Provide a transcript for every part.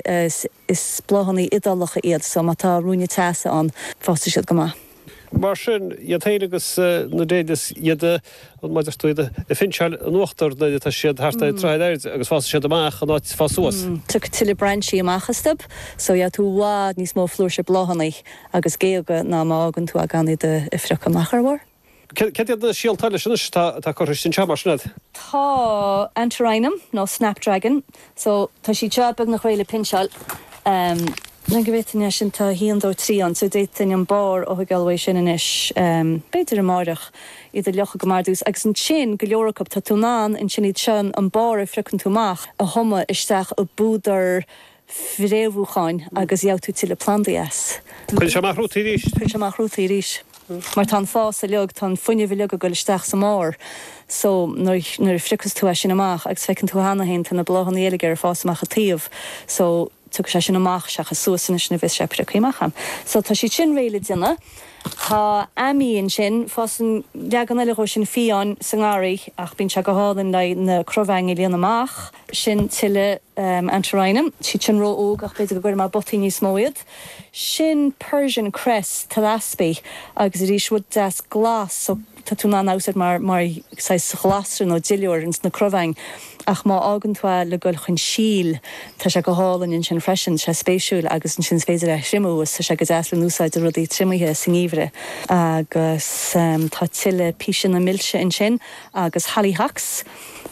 Is bláthannaí Iodálacha iad so má tá ruainne teasa ann fásfaidh siad go maith. Mar sin iad féin agus na dahlias iad an malartú iad a phinseáil in uachtar nuair atá siad thart ar troigh ar airde agus fásfaidh siad amach in áit fás suas. Tiocfaidh tuilleadh brainsí amach astub so gheobhaidh tú i bhfad níos mó flúirse bláthannaí agus géaga ná má fhágann tú gan iad a phriocadh amach ar a bharr. Cad iad na síolta eile sin anois atá curtha istigh anseo mar sin agat? Tá Antirrhinum nó Snapdragon, so tá siad seo beagnach réidh le pinseáil. Le go bhféadfainn é sin tá 1, 2, 3 ann, so d'fhéadfainn an barr a thóigeáil uaidh sin anois b'fhéidir amáireach, iad a fhliuchadh go maith ar dtús agus ansin go leor acu tá tú in ann ansin iad seo, an barr a phriocann tú amach, a thumadh isteach i bpúdar fréamhúcháin agus gheobhaidh tú tuilleadh plandaí as. Cuireann sé amach rútaí arís. Cuireann sé amach rútaí arís. Mar tá an fás uiliog, tá an fuinneamh uiliog ag goil isteach sa mbarr so nuair a phriocas tú é sin amach agus feiceann tú cheana féin tá na bláthannaí uilig ag fás amach a' taobh so tiocfaidh sé sin amach seachas suas anois nuair bheas sé priocthaí amach ann. So tá siad sin réidh le déanamh. Tá Ammi ansin, fásann leagan eile dhó sin fiáin sa ngarraí ach bíonn sé go hálainn le na crobhaingí a líonadh amach. Sin tuilleadh Antirrhinum. Siad sin ró-óg ach b'fhéidir go gcuirfidh mé i bpotaí níos mó iad. Sin Persian cress Thlaspi agus arís rud deas glas so tá tú in ann é a úsáid mar saghas glasra nó duilliúr ins na crobhaing ach má fhágann tú é le goil chun síl tá sé go hálainn ansin freisin. Tá sé spéisiúil agus ansin is féidir é a thriomú is tá sé go deas le n-úsáid do rudaí triomaithe sa ngeimhreadh. Agus tá tuilleadh píseanna milse ansin agus hollyhocks.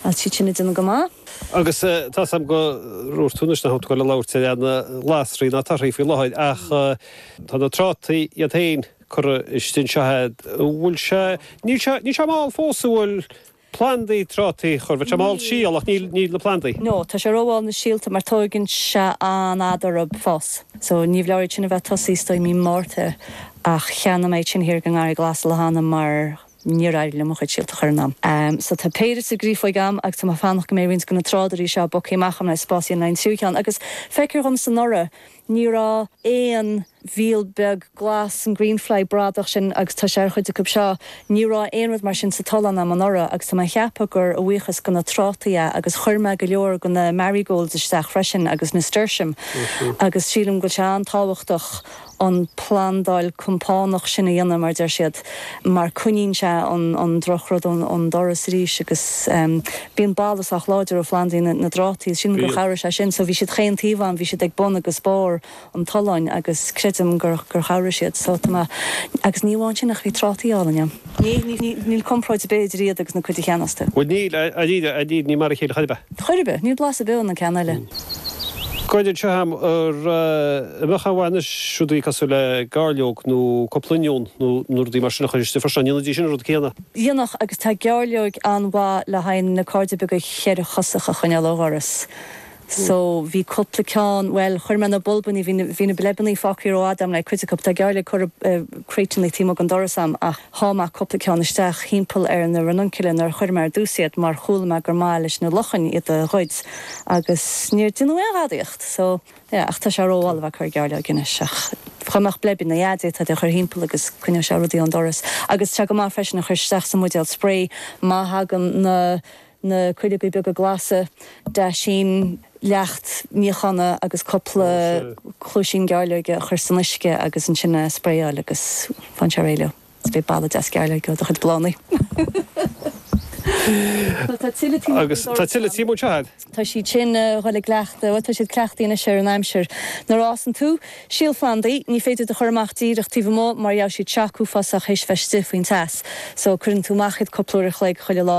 Tá siad sin ag déanamh go maith. Agus tá's agam gur dhúirt tú anois nach raibh tú ag gabháil ag labhairt ar na glasraí ná torthaí faoi láthair ach tá na trátaí iad féin curtha istigh anseo a'd an bhfuil sé, níl sé, níl sé mall fós an bhfuil plandaí trátaí a chur, bhfuil sé mall Níl, síol ach níl, níl na plandaí. no, tá sé rómhall na síolta mar tóigeann sé an-fhada orthub fás so ní foláir iad sin a bheith tosaí is dóigh mí Márta ach cheannaigh mé iad sin thiar i nGarraí Glas an lá cheana mar Níor éirigh liom mo chuid síolta a chur in am. So tá péire sa grow bag a'm agus tá mé ag fanacht go mbeidh roinnt de na tráidirí seo bogtha amach a'm le spás a dhéanamh le haghaidh an tríú ceann agus feictear dhomsa anuraidh ní raibh aon mhíol beag glas an greenfly bradach sin agus tá sé ar chuid acu seo. Ní raibh aon rud mar sin sa tollán a'm anuraidh agus tá mé ag ceapadh gur a bhuíochas do na trátaí é agus chuir mé go leor de na marigolds isteach freisin agus nasturtium agus sílim go bhfuil sé an-tábhachtach an phlandáil compánach sin a dhéanamh, mar deir siad, mar coinníonn sé an drochrud ón doras arís agus bíonn boladh sách láidir ó phlandaí na dtrátaí, sílim gur chabhraigh sé sin so bhí siad chaon taobh a'm, bhí siad ag bun agus barr an tolláin agus creidim gur chabhraigh siad so tá mé, agus ní amháin sin ach bhí trátaí álainn a'm. Níl, níl compráid ar bith idir iad agus an chuid a cheannaíos tú. Bhuel níl, a Dhia, a Dhia, ní mar a chéile chor ar bith. Chor ar bith, níl blas ar bith ann an ceann eile. Céard seo agam an mbeadh aon mhaith anois rudaí cosúil le gairleog nó cúpla oinniún nó nó rudaí mar sin a chur istigh freisin, an ndéanfaidís sin an rud céanna? Dhéanfadh, agus tá gairleog an-mhaith le haghaidh na cairde beaga cheithre chosach a choinneáil ó dhoras. So bhí cupla ceann, bhuel chuir mé na bulbannaí, bhí na, bhí na bleibeannaí fágthaí rófhada a'm le cuid acu, tá gairleog curtha i gcrateanna taobh amuigh den doras a'm ach sháigh mé cupla ceann isteach thimpeall ar na ranunculi nuair a chuir mé ar dtús iad mar chuala mé gur maith leis na luchain iad a ghoid agus níor déanadh aon ghadaíocht. So yeah ach tá sé rómhall ag cur gairleog anois ach dhá mbeadh bleibeanna a'd d'fhéadfá iad a chur thimpeall agus coinneodh sé rudaí ón doras agus tá go maith freisin a chur isteach sa mbuidéal sprae má thagann na na cuileoga beaga glasa, daisín, leacht níochána agus cúpla cluaisín gairleoige a chur san uisce agus ansin a spraeáil agus faigheann sé réidh leo agus beidh boladh deas gairleoige ó do chuid bláthannaí. Agus tá tuilleadh tím anseo a'd. Tá siad sin a dhul ag cleachtadh, bhuel tá siad ag cleachtadh anois ar an aimsir. Nuair a fhásann tú, síolphlandaí, ní féidir iad a chur amach díreach taobh amuigh mar gheobhaidh siad shock uafásach théis bheith istigh faoin teas. So cuireann tú amach iad cúpla uair a chloig chuile lá.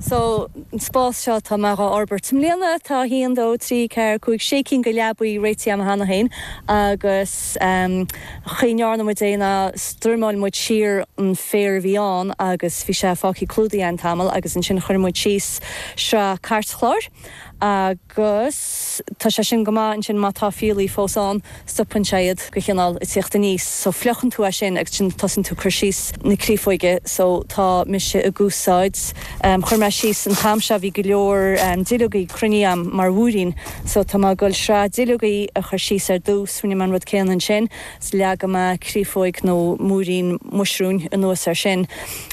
Sa spás seo tá mé dhá fhorbairt i mbliana. Tá a haon, dó, trí, ceathair, cúig, sé cinn de leabaí réitithe agam cheana féin agus chaoi a ndearna muid é ná strimeáil muid siar an féar a bhí ann agus bhí sé fágtha clúdaithe an tamall agus ansin chuir muid síos sraith cairtchláir agus Agus tá sé sin go maith ansin má tá fiailí fós ann, stopann sé iad go cineál ag tíocht aníos. So fliuchann tú é sin agus ansin tosaíonn tú ag cur síos na criafoige. So tá mise ag úsáid, chuir mé síos an t-am seo bhí go leor duilleogaí cruinnithe a'm mar mhúirín. So tá mé ag goil sraith duilleogaí a chur síos ar dtús, rinne mé an rud céanna ansin, leagfaidh mé criafóig nó múirín muisriúin anuas ar sin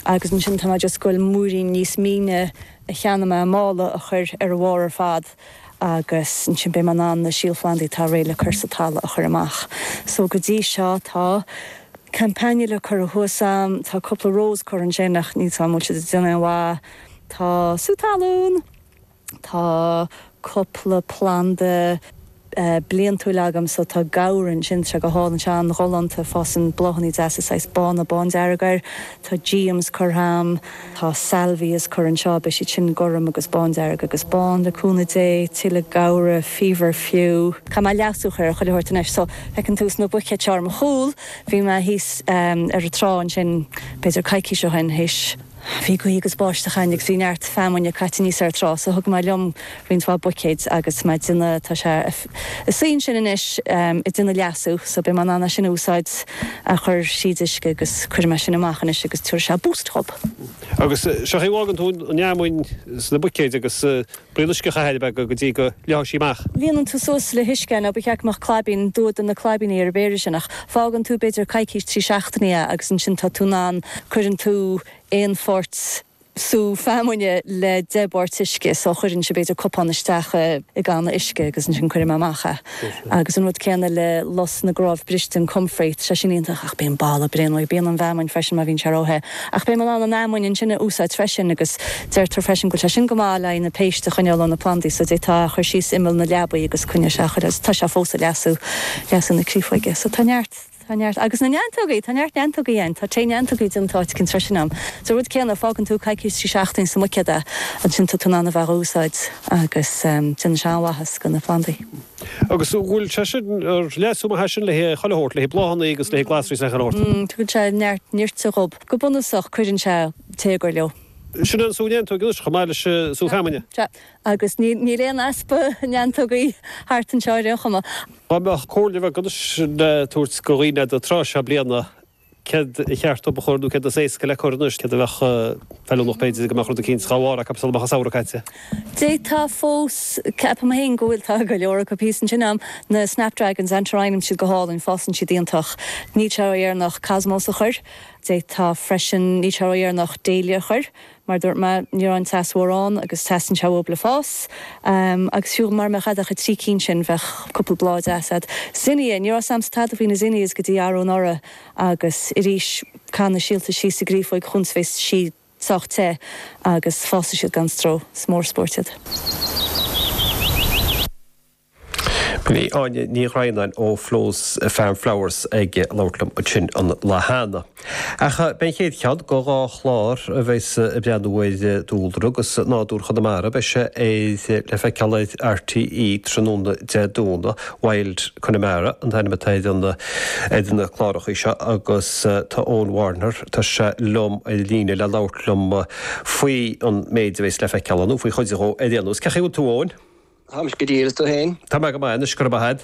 agus ansin tá mé just ag goil múirín níos míne, a cheannaigh mé i mála a chur ar a bharr ar fad agus ansin beidh mé in ann na síolphlandaí atá réidh le cur sa talamh a chur amach. So go dtí seo tá Campanula curtha thuas a'm, tá cúpla rós curtha ansin ach níl a fhios a'm, an bhfuil siad ag déanamh aon mhaith? Tá sú talún, tá cúpla planda, bliantúil agam so tá gaura ansin, sé go hálainn, sé an-ghalánta, fásann bláthannaí deasa saghas bána, bándearg air, tá geums curtha a'm, tá Salvias curtha anseo, beidh siad sin gorm agus bándearg agus bán, le cúnamh Dé, tuilleadh gaura, feverfew. Caithfidh mé leasú a chur ar chuile shórt anois so feiceann tú sna buicéid seo ar mo chúl, bhí mé thíos ar an trá ansin b'fhéidir coicís ó shin, théis, Bhí gaoth agus báisteacháin agus bhí neart feamainn caite aníos ar trá so thug mé liom roinnt mhaith buicéid agus mé á dhéanamh tá sé ina shuí ansin anois ag déanamh leasú so beidh mé in ann é sin a úsáid a chur thríd uisce agus cuirfidh mé sin amach anois agus tabharfaidh sé boost dhóib. Agus sé an chaoi a bhfágann tú an fheamainn sna buicéid agus braon uisce a chaitheamh ar a beaga go dtí go leáfadh sí amach. Líonann tú suas le huisce é nó ba cheart go mbeadh claibín, d'imigh na claibíní ar an bpéire sin ach fágann tú b'fhéidir coicís, trí seachtainí é agus ansin tá tú in ann, cuireann tú aon pháirt sú feamainne le deich bpáirt uisce so cuireann sé b'fhéidir cupán isteach i gcanna uisce agus ansin cuirim amach é. Agus an rud céanna le lus na gcnámh briste an comfrey, tá sé sin iontach ach bíonn boladh bréan uaidh. Bíonn ón bhfeamainn freisin má bhíonn sé ró-the. Ach beidh mé in ann an fheamainn ansin a úsáid freisin agus deirtear freisin go bhfuil sé sin go maith le haghaidh na péiste a choinneáil ó na plandaí so d'fhéadfá a chur síos imeall na leapachaí agus coinneoidh sé a chur ar. Tá sé fós ag leasú, leasú na créafóige. So tá neart. Tá neart. Agus na neantógaí! Tá neart neantógaí ann. Tá tae neantógaí den tsórt céanna ansin ann. Sé an rud céanna, fágann tú coicís, trí seachtaine sa mbuicéad é, ansin tá tú in ann é a úsáid agus déanann sé an-mhaitheas go na plandaí. Agus an bhfuil sé sin ar leith as a thaitin le chuile shórt, le haghaidh bláthannaí agus le haghaidh glasraí is achan shórt? M, Tugann sé neart nítrigin dhóib. Go bunúsach cuireann sé téagar leo. Sin an sú neantóg anois, chomh maith leis an sú feamainne. Sea. Agus níl aon easpa neantógaí thart anseo ar aon chuma. Dhá mbeadh comhairle bheag anois le tabhairt go dhaoine ag an tráth seo bliana, céard ba cheart dóib a chur nó céard is éasca le cur anois, céard a bheadh feiliúnach b'fhéidir go mbeadh rud eicínt dhá bharr acu sula mbeadh an Samhradh caite. D'fhéadfá fós, ceapaim féin go bhfuil, tá go leor acu thíos ansin a'm, na Snapdragons, Antirrhinum, tá siad go hálainn, fásann siad iontach. Níl sé ró-dheireanach Cosmos a chur. D'fhéadfá freisin, níl sé ró-dheireanach Dahlia a chur. Mar a dúirt mé, ní raibh an teas mór ann agus teastaíonn sé uathub le fás. Agus fiú mara mbeadh a'd ach trí cinn sin, bheadh cúpla bláth deas agat. Zinnia! Ní raibh a fhios a'msa tada faoi na zinnias go dtí arú anuraidh agus arís caith na síolta síos i gcréafóg chúns a bheas sí sách te agus fásfaidh siad gan stró. Is mór an spóirt iad. Bhí Áine Ní Dhroighneáin ó Flo's Farm Flowers ag labhairt liom ansin an lá cheana. Ach beidh an chéad cheann de dhá chlár a bheas ag breathnú ar dúlra agus nádúr Chonamara, beidh sé le feiceáil ar RTÉ tráthnóna Dé Domhnaigh. Wild Connemara an t-ainm atá ar na clárachaí seo agus tá Eoin Warner, tá sé liom ar an líne le labhairt liom faoi an méid a bheas le feiceáil ann, nó faoi chuid dhó ar aon nós. Cén chaoi a bhfuil tú Eoin? Tá mé go diail, agus tú féin? Tá mé go maith anois, go raibh maith a'd.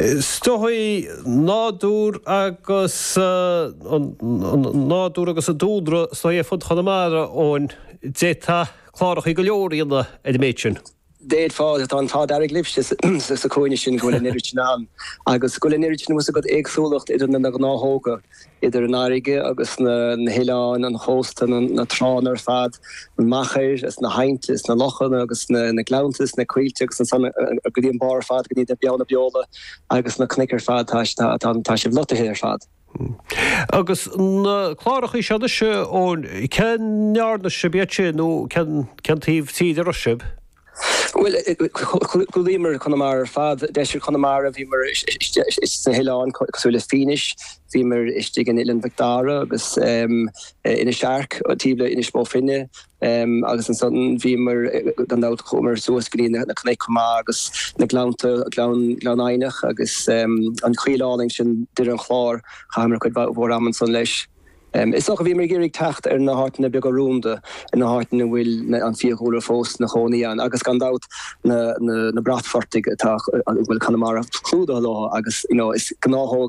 Is dóigh nádúr agus an nádúr agus an dúlra is dóigh ar fud Chonamara, Eoin. D'fhéadfá clárachaí go leor a dhéanamh ar an méid sin. D'fhéadfá. Tá an t-ádh dearg libhse sa chúinne sin go bhfuil an oiread sin ann agus go bhfuil an oiread sin tá a fhios agat éagsúlacht idir na ngnáthóga. idir an fhairrge agus na h-oileáin, an chósta, na trághanna ar fad, na machair is na h-aibhnte is na lochanna agus na gleannta is na coillte agus ansan go dtí an bárr ar fad go dtí na Beanna Beola agus na cnuic ar fad tá sibh lotaithe ar fad. Agus na clárachaí seo anois, Eoin, cé ndeárna sibh iad sin nó cén taobh tíre a raibh sibh? Bhuel, chlúdaíomar Conamara ar fad, deisceart Chonamara, bhíomar istigh sna hoileáin cosúil le Fínis, bhíomar istigh in Oileán Mhic Dara agus Inis Airc taobh le Inis Bó Finne agus ansan bhíomar gan dabht chuamar suas go dtí na cnoic chomh maith agus na gleannta, Gleann Eidhneach agus an choill álainn sin Doire an Chláir, chaitheamar cuid mhór ama ansan leis. Is dócha bhíomar ag iarraidh teacht ar na háiteanna beaga rúnda, ar na háiteanna a bhfuil an fiadhúlra fós 'na chónaí ann agus gan dabht na bratphortaigh atá, a bhfuil Conamara clúdaithe leo agus you know is gnáthóg